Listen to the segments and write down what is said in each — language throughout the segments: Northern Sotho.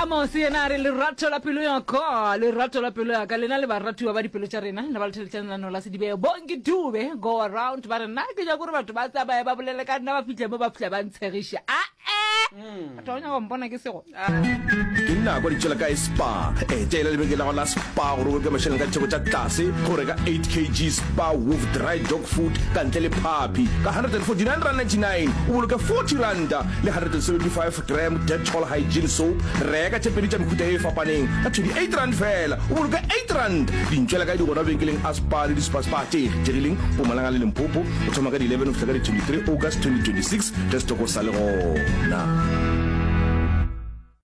amos yena a re lerato la pelo ya ka lerato la pelo ya ka lena le baratiwa ba dipelo tša rena le ba letheletšanelano la sedibeo bonke dube go around ba re nna ke ja kore batho ba tsamaye ba bolele ka nna ba fitlhe mo ba fitlha ba ntshegiše ae batho ba nyaka go mpona ke sego ke nna kwa ditšela ka spa etela lebeke la go la spa gore o ke mašeleng ka theko tša tlase go reka 8 kg spa wolf dry dog food ka ntle le phapi ka 149 rand 99 o boloke 40 ranta le 175 gram detol hygiene soap reka tše pedi tša mehuta e e fapaneng ka 28 rand fela o boloke 8 rand dintšwela ka di gona benkeleng a spa le dispa spa tše kgethegileng pomalanga le lempopo o thoma ka di-11 go fihla ka di-23 august 2026 ge setoko sa le gona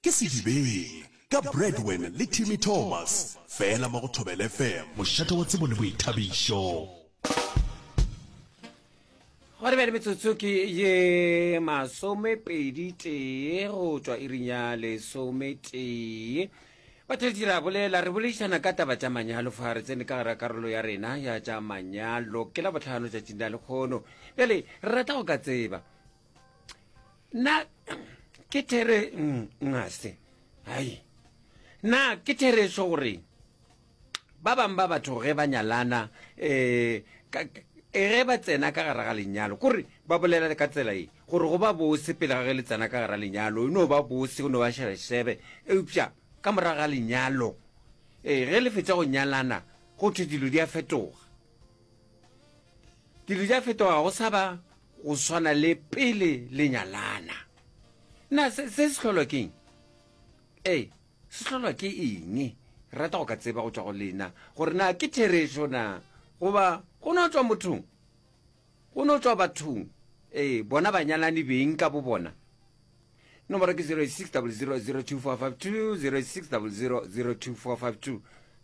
Ke Sedibeng, ka Bradwen le Timmy Thomas, fela mo go Thobela FM. Mošate wa tsebo le boithabišo. Go re bjale metsotso ke ye masomepedi tee go tšwa iring ya lesometee batheledi ra bolela re boledišana ka taba tša manyalo fa re tsene ka gara karolo ya rena ya tša manyalo ke la botlhano tšatšing la lekgono bjale re rata go ka tseba na ke there ngase hai na ke thereso gore ba bangwe ba batho ge ba nyalana um ge ba tsena ka gara ga lenyalo kore ba bolela ka tsela e gore go ba bose pele ga ge le tsena ka gara lenyalo e no ba bose o no ba shebeshebe eupša ka morago ga lenyalo um ge le fetsa go nyalana go thwe dilo di a fetoga Dilo di a fetoga go sa ba go swana le pele le nyalana. Na se se sehlolwa ke eng? Ee, sehlolwa ke eng? Re rata go ka tseba go tšwa go lena gore na ke therešo na goba go no tšwa mothong go no tšwa bathong ee bona banyalani beng ka bo bona nomoro ke 06000245206000024520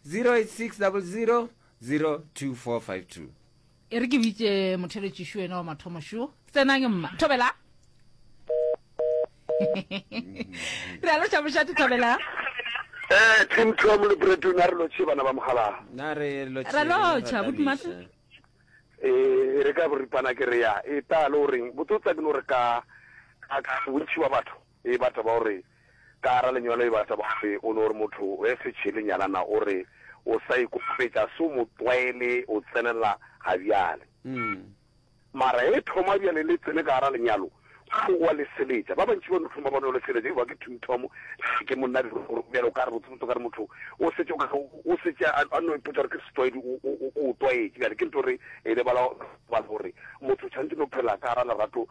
0600 02452 e re ke bitse motheletši šo ena wa mathomo šo tsenang mma thobela re a loša mošate thobela Eh, Tim Tom le Bretton a re lotšhe bana ba mogala. Na re lotšhe. Re lotšha bo dumata. Eh, re ka boripana ke re ya. E ta le o reng? Botsotsa ke no re ka ka bontši ba batho. E ba taba o re ka gara lenyalo e ba taba o re o no re motho we se tšhele nyalana o re o sa ikokobetša so mo tlwaele o tsenela ga bjale mara e thoma bjale le tsene ka gara lenyalo o wa le seletša ba bantši ba no thoma ba no le seletša e ba ke thum thom ke monna di gore bjale o ka re botse botse ka re motho o se tšo ka o se tša a no ipotsa gore ke se tlwaedi o o o tlwaetse bjale ke ntho re e le bala ba gore motho tšhantse no phela ka gara lerato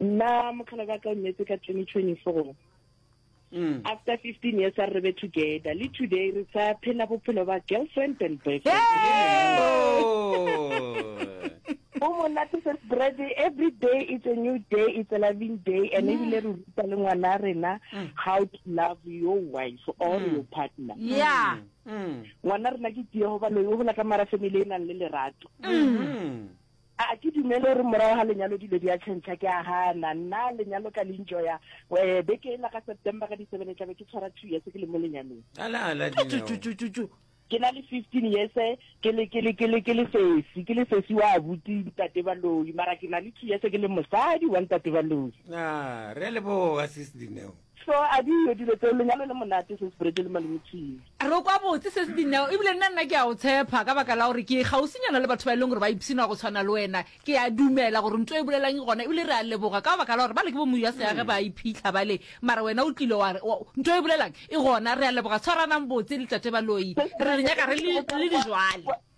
nna mokgala ba ka o nyetse ka 2024 mm. after 15 years a re be together le today re sa phela bophelo ba girlfriend and boyfriend o monate se spread every day it's a new day it's a loving day and mm. ebile re ruta le ngwana rena mm. how to love your wife or mm. your partner yeah ngwana rena ke tiego ba loyo gola ka mara family e nang le lerato A ke dumele gore morago ga lenyalo dilo di a tšhentšha? Ke a gana. Nna lenyalo ka le enjoya. Wee, beke ela ka September ka di seven e tla be ke tshwara two years ke le mo lenyalong. Ala, ala, Dineo! Tututututu! Ke na le fifteen years ke le, ke le, ke le, ke le sesi, ke le sesi wa abuti Ntate Baloyi, mara ke na le two years ke le mosadi wa Ntate Baloyi. A, re a leboga, Sis Dineo. So a di yo dilo tseo lenyalo le monate sis Bridge le malome Tshwine. Re kwa botse ses Dineo ebile nna nna ke a go tshepha ka baka la gore ke kgausinyana le batho ba e leng gore ba ipshina go tshwana le wena ke a dumela gore nto e bolelang ke gona ebile re a leboga ka baka la gore bale ke bo moya seage ba iphitlha bale mara wena o tlile wa re nto e bolelang e gona re a leboga tshwaranang botse le tate Baloyi re le nyaka re le le dijwale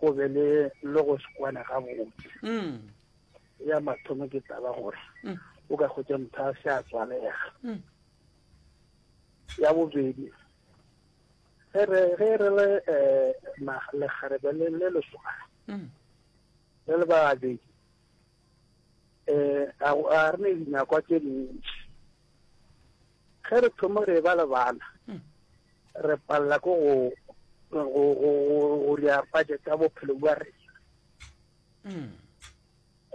go be le le go se kwane gabotse mm. ya mathomo ke taba gore mm. o ka kgotsa motho a se a tswalega mm. ya bobedi ge re le um lekgarebe le leswana le le babedi um ga go- ga re ne dinakwa tše dintši ge re thoma re ba le bana re palela ko go go- go- go- go ya budget ya bophelo bja rena Mm.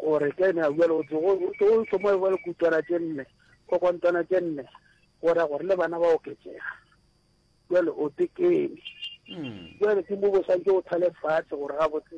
gore ke ne a bua le gotse o thoma ba le kutswana tše nne kokontwana tše nne gore gore le bana ba oketsega jale o tekene Mm. jale ke mo bo santse o thale fatshe gore ga botse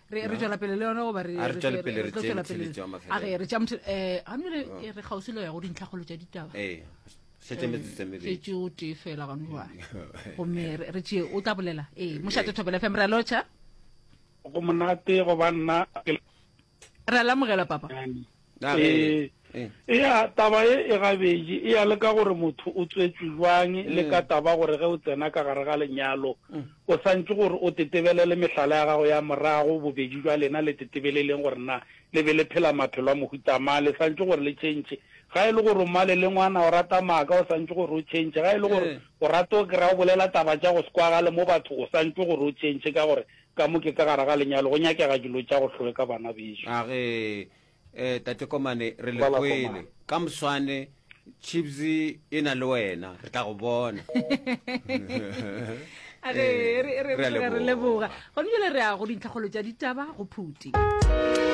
re re tswela pele le yone goba re re tswela pele re tswela pele a re re tšamtse eh a mme re oh. re gausi le ya go dintlha golo tša ditaba eh setse me tse me be tšo te fela ga nwa go me re tšee o tla bolela eh mo shatse thobela fm re locha go monate go banna ke re la mogela papa Ee, ea taba ye e gabedi e ya le ka gore motho o tswetšwe jwang le ka taba gore ge o tsena ka gare ga lenyalo o santše gore o tetebelele mehlala ya gago ya morago. Bobedi jwa lena le tetebeleleng gore na le be le phela maphelo a mohuta mang. Le santše gore le tšhentšhe. Ga e le gore o male le ngwana, o rata maaka, o santše gore o tšhentšhe. Ga e le gore o rata o kry-a o bolela taba tša go se kwagale mo batho, o santše gore o tšhentšhe ka gore Ka mo ke ka gare ga lenyalo, go nyakega dilo tša go hlweka, bana bešo. A ge, eh, Tate Komane, re le kwele. Ka moswane, Chips e na le wena. Re tla go bona. A ge, re, re, re, re a leboga. Gona bjale re ya go dintlhakgolo tša ditaba go phuti.